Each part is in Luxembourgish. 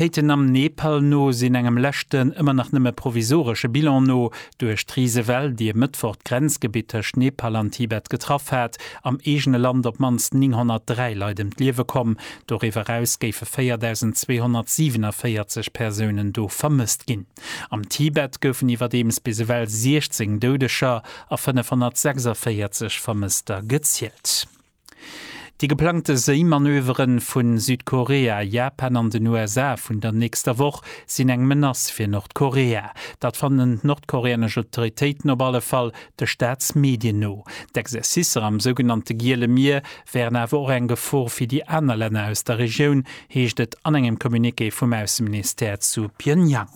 D'Féiten am Nepal no sinn engem leschten, ëmmer nach nëmme provisoresche Bilan no, duerch d'Risewell, déi e Mëttwoch d'Grenzgebitt tëscht Nepal an Tibet getraff hat, am eegene Land op d'mannst 903 Leit ëm d'Liewe komm. Doriwwer eraus géife 4.247 Persounen do vermësst ginn. Am Tibet goufen iwwerdeems bis ewell 16 Doudeger a 546 Vermësster gezielt. Déi geplangte Séimanövere vu Südkorea, Japan an den USA vun der nächster Woch sinn eng Menace fir Nordkorea. Dat fannen d'nordkoreanesch Autoritéiten op alle Fall, de Staatsmedien no. D'Exercicer am sougenannte Giele Mier wären awer och eng Gefor fir déi aner Länner aus der Regioun, heescht et an engem Communiqué vum Ausseministère zu Pyongyang.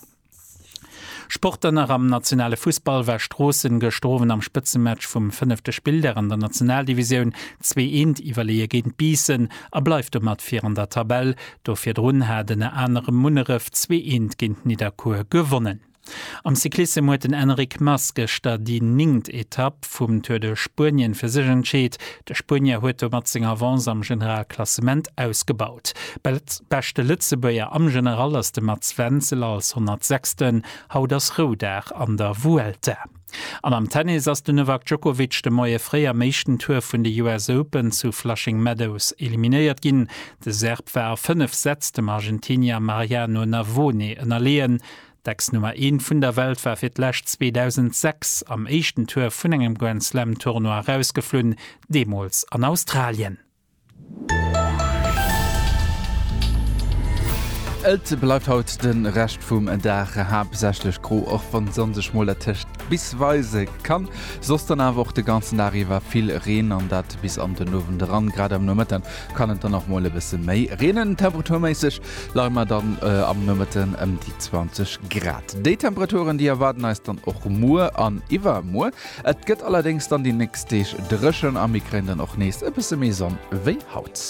Sport dann nach, Am nationale Fussball war Stroossen gëschter Owend am Spëtzematch vum fënnefte Spilldag an der Nationaldivisioun zwee Eent iwwerleeë géint Biissen a bleift domat vir an der Tabell. Do virdrun hat ënner anerem Munneref zwee Eent géint Nidderkuer gewonnen. Am Cyclissem huet den Enric Mas gëschter déi néngt Etapp vum Tour de Spuenien fir sech entscheet. De Spuenier huet domat seng Avance am Generalklassement ausgebaut. Beschte Lëtzebuerger am General ass de Mats Wenzel als 106. Haut ass Roudag an der Vuelta. An am Tennis ass de Novak Djokovic de Moie fréi am éischten Tour vun de US Open zu Flushing Meadows eliminéiert ginn. De Serb war a 5 Sätz dem Argentinier Mariano Navone ënnerleeën. D'Ex-Nummer Eent vun der Welt war fir d'lescht 2006 am éischten Tour vun engem Grand Slam Tournoi erausgeflunn, deemools an Australien. Et bleift haut de Rescht vum Dag haaptsächlech gro, och wann d'Sonn sech mol dertëscht bis weise kann. Soss dann awer och de ganzen Dag iwwer vill Reen an dat bis an den Owend eran. Grad am Nomëtten kann et dann och mol e bësse méi reenen. Temperaturméisseg leie mer dann am Nomëtten ëm déi 20 Grad. Déi Temperaturen, déi erwaarden eis dann och muer an iwwermuer. Et gëtt allerdéngs dann déi nächst Deeg dréchen a mir kréien dann och nees e bësse méi Sonn wéi haut.